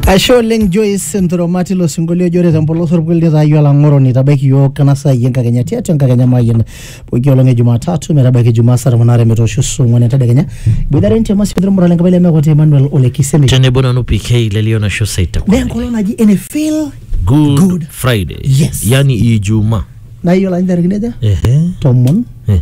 Ashe oleng Joyce Nturoma tilo sinkolio ojo ore tempolos orpukel nitaayio olang'oroni itabaiki iyiook ena saa iyie enkakenya tiatua enkakenya mayian pooki olong e Jumatatu metabaiki Jumaa saa tomon aare metoosho saa ong'wan entedekenya iboitare ntema sikitok murale enkapai lemekuati Emmanuel Ole Kisemi tenebo nanu PK lelio nasho saita naa enkolong naji ene feel good, Good. friday Yes. yani ijumaa naa iyiolo ajo ntarikini aja ehe tomon eh.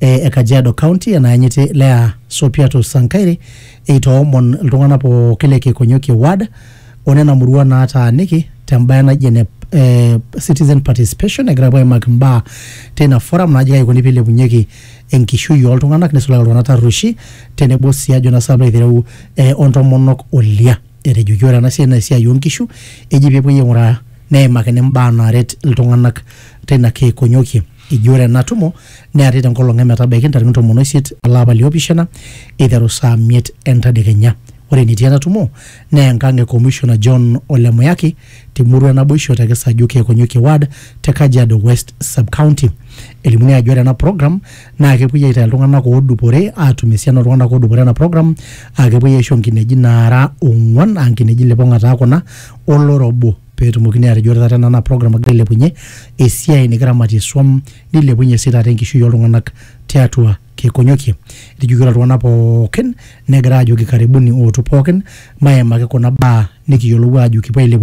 e Kajiado County enayanyiti Lea Sopiato Sankaire eitoomon iltung'anak pooki le Kekonyokie ward o nena murua naataaniki tembae naji ene eh, citizen participation egira apuo aimaki mbaa teina forum naji kaji ikoni pilepunyeki enkishui oltung'anak nisulaki iltung'anak tarrueshi tenebo sii ajo nasa alo aitereu eh, ontomonok olia etejoki ore ena siai naa esiai onkishu eji pepuoi aing'uraa neimakini mbaa naaret iltung'anak teina Kekonyokie Eji ore ena tumo neari tenkolong emetabaiki ntarikini tomon oisiet olapa liopishana eiteru saa miet entadekenya. Ore enetii ena tumo naa enkang e Commissioner John Ole Muyaki te murua e Naboisho te Kisaju Keekonyokie Ward te Kajiado West Sub-county. Elimuni ajo ore ena program naa kepuoi aitayu iltung'ana oodupore aatum esiana ooltung'ana oodupore ena program aa kepuoi aisho nkineji naara ong'uan aa nkineji lipong'a taa kuna o loro obo. peetumokini aatejo ore taata ena naa program nagira ailepunye esiai nikiramatie swam nilepunye sii taata enkishui oltung'anak tiatua Kekonyokie. Etejoki ore iltung'anak pookin negira aajoki karibuni ootu pookin maimaki kuna baa nikiyiolou aajo kipuo ailepunye